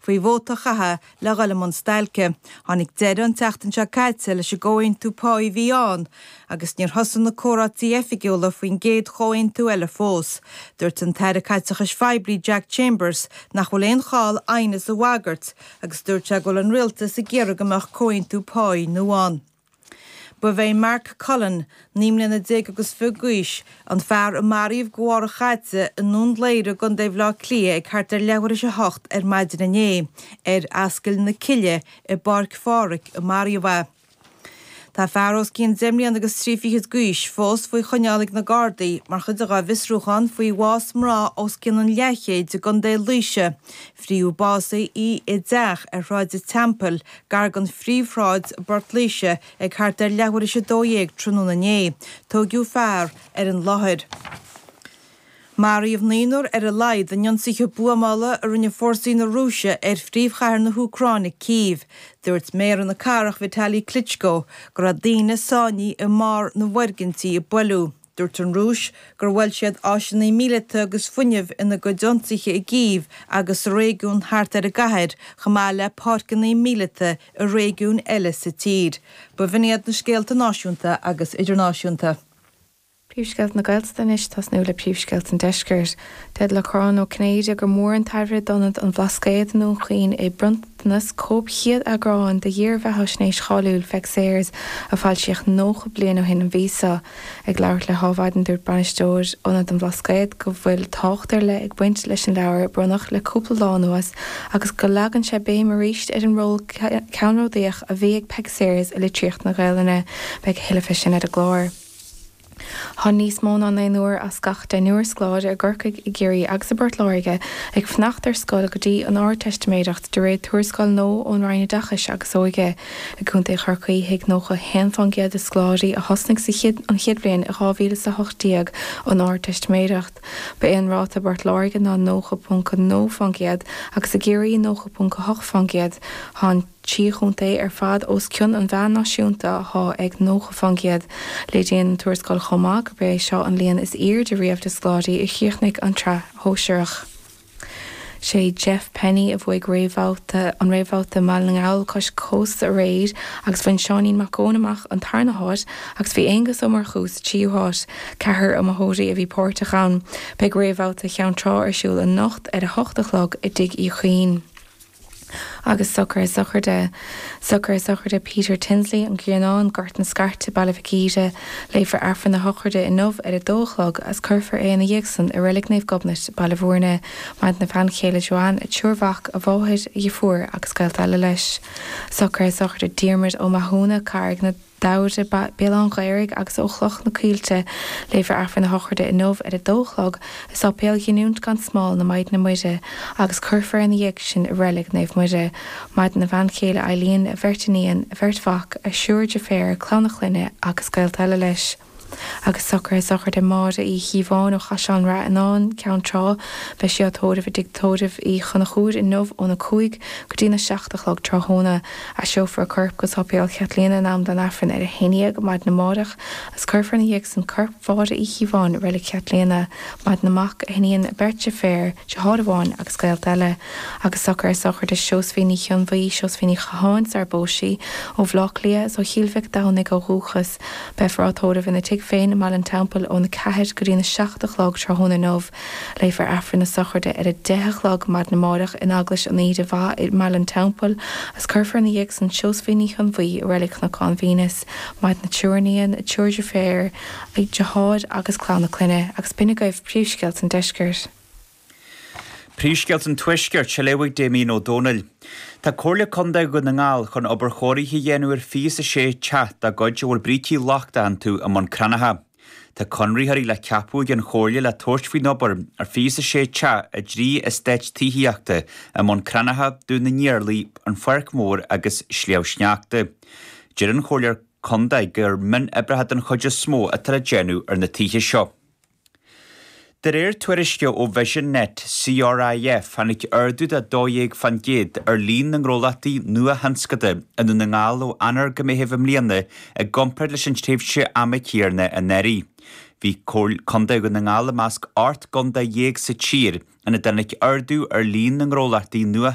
faoi vóta a chaitheamh le dhul i mbun stailce. Tháinig deireadh an tseachtain seo caite leis an gcomhaontú páí a bhí ann agus níor thosaigh na comhráití oifigiúla faoin gcéad chomhaontú eile fós. Dúirt an tAire Caiteachais Phoiblí Jack Chambers nach bhfuil aon chall aighneas a bhagairt agus dúirt sé go bhfuil an rialtas ag iarraidh go mbeadh comhaontú páí nua ann. Ba é Mark Cullen, naoi mbliana déag agus fiche d'aois, an fear a maraíodh de bharr a sháite i nDún Laoghaire i gContae Bhaile Átha Cliath ag thart ar leathuair is a hocht ar maidin inné. Ar Ascaill na Cille i bPáirc Pháraic a maraíodh é. Tá fear os cionn deich mbliana agus trí fichid d'aois fós faoi choinneáil ag na Gardaí mar chuid dhá bhfiosrúchán faoi bhás mná os cionn an leathchéid i gContae Laoise, fríothadh básaithe í i dteach ar Shráid an Teampaill gar don phríomhshráid i bPort Laoise ag thart ar leathuair is a dó dhéag tráthnóna inné, tóigeadh fear ar an láthair. Maraíodh naonúr ar a laghad in ionsaithe buamála a rinne fórsaí na Rúise ar phríomhchathair na hÚcráine, Cív. Dúirt méara na cathrach, Vitali Klitschko, go raibh daoine sáinnithe i mbarr na bhfoirgintí a buaileadh. Dúirt an Rúis gur bhuail siad áiseanna míleata agus fuinnimh ina gcuid ionsaithe i gCív agus sa réigiún thart ar an gcathair, chomh maith le páirceanna míleata i réigiúin eile sa tír. B'in iad na scéalta náisiúnta agus idirnáisiúnta. Príomhscéalta na Gaeltachta anois ag tosnú le príomhscéalta an Deiscirt. Deir Lorcán Ó Cinnéide gur mhór an taibhreamh d'Ionad an Bhlascaoid i nDún Chaoin é bronntanas cóip chéad eagráin de dhírbheatháisnéis cháiliúil Pheig Sayers a foilsíodh 90 bliain ó shin an mhí seo. Ag labhairt le hAdhmhaidin, dúirt bainisteoir Ionad an Bhlascaoid go bhfuil tábhacht ar leith ag baint leis an leabhar a bronnadh le cúpla lá anuas agus go leagann sé béim arís ar an ról ceannródaíoch a bhí ag Peig Sayers i litríocht na Gaelainne. Beidh a thuilleadh fé sin ar an gclár. Tá níos mó ná naonúr as gach deichniúr scoláire i gCorcaigh, i gCiarraí agus i bPort Láirge ag fanacht ar scoil go dtí an Ardteistiméireacht, de réir tuarascáil nua ón Roinn Oideachais agus Óige. I gContae Chorcaí, thug 91 fán gcéad de scoláirí a thosnaigh sa an chéad bhliain i 2018 an Ardteistiméireacht. Ba é an ráta i bPort Láirge ná 90.2 fán gcéad agus i gCiarraí 90.8 fán gcéad. Tá an. trí chontae ar fad os cionn an mheáin náisiúnta athá ag 90%. Léiríonn an tuarascáil chomh maith gurb é seo an líon is airde riamh de scoláirí a chríochnaigh an tsraith shóisearach. Sé Jeff Penney a bhuaigh réamhbhabhta an réamhbhabhta i mBaile na nGall Cois Cósta aréir agus bhain Seáinín Mac Eoin amach an tarna háit agus bhí Aonghus Ó Murchú sa tríú háit. Ceathrar iomaitheoirí a bhí páirteach ann. Beidh réamhbhabhta Cheann Trá ar siúl anocht ar a hocht a chlog i dTigh Uí Chuinn. Agus socruithe sochraide, socruithe sochraide Peter Tinsley, An Grianán, Gort na Scairte, Baile Mhic Íre, léifear Aifreann a shochraide inniu ar a dó a chlog agus cuirfear é ina dhiaidh san i Reilig Naomh Gobnait, Baile Mhúirne, maireann a bhean chéile Joanne, a thriúr mac, a mháthair, a dheirfiúr agus gaolta eile leis. Socruithe sochraide Diarmuid Ó Mathúna, Carraig na. Damhaire, Béal Átha an Ghaorthaidh agus ó Chloich na Coillte, léifear Aifreann a shochraide inniu ar a dó a chlog i Sáipéal Ghiniúint gan Smál na Maighdine Muire agus cuirfear ina dhiaidh sin i Reilig Naomh Muire, maireann a bhean chéile Eileen, a bheirt iníon, a bheirt mhac, a thriúr deirféar, clann a chlainne agus gaolta eile leis. Agus socruithe sochraide Máire Uí Chíobháin ó Chaisleán Ráthanáin, Ceann Trá, beidh sí á tórramh i dTigh Tórraimh Uí Chonchúir inniu óna cúig go dtína seacht a chlog tráthnóna. Aistreofar a corp go Sáipéal Chaitlíona in am don Aifreann ar a haon dhéag maidin amáireach agus cuirfear ina dhiaidh san corp Mháire Uí Chíobháin i Reilig Chaitlíona. Maireann a mac, a hiníon, a beirt deirféar, deartháir amháin agus gaolta eile. Agus socruithe sochraide Seosaimhín Uí Chonmhaí, Seosaimhín Ní Chatháin sarar phós sí, ó Bhleá Cliath, is ó Chill Mhic Domhnaigh ó dhúchas. Beifear á tórramh ina tigh féin i mBaile an Teampaill ón 4 go dtí an 7 a chlog tráthnóna inniu. Léifear Aifreann na sochraide ar a deich a chlog maidin amárach in Eaglais an Aoire Mhaith i mBaile an Teampaill agus cuirfear ina dhiaidh san Seosaimhín Uí Chonmhaí i Reilig Chnocán Venus maireann a triúr iníon, triúr deirféar, deartháir agus clann a clainne agus B'in agaibh príomhscéalta an deiscirt. Príomhscéalta an Tuaiscirt, á léamh ag Damien Ó Dónaill. Tá Comhairle Contae Dhún na nGall chun obair chóirithe a dhéanamh ar fiche is a sé teach dá gcuid a bhfuil brící lochta iontu i mBun Cranncha. Tá conraitheoirí le ceapadh ag an Chomhairle le tabhairt faoin obair ar fiche is a sé teach i dtrí eastát tithíochta i mBun Cranncha, Dún na nIarlaí, An Pháirc Mhór agus Sliabh Sneachta. Deir an Chomhairle Contae gur mionoibreacha den chuid is mó atá le déanamh ar na tithe seo. De réir tuairisce ó Vision Net CRIF, tháinig ardú de 12% ar líon na ngnólachtaí nuathionscanta i nDún na nGall ó Eanáir go Meitheamh i mbliana i gcomparáid leis an tréimhse ama chéanna anuraidh. Bhí Contae Dhún na nGall i measc ocht gcontae dhéag sa tír ina dtáinig ardú ar líon na ngnólachtaí nua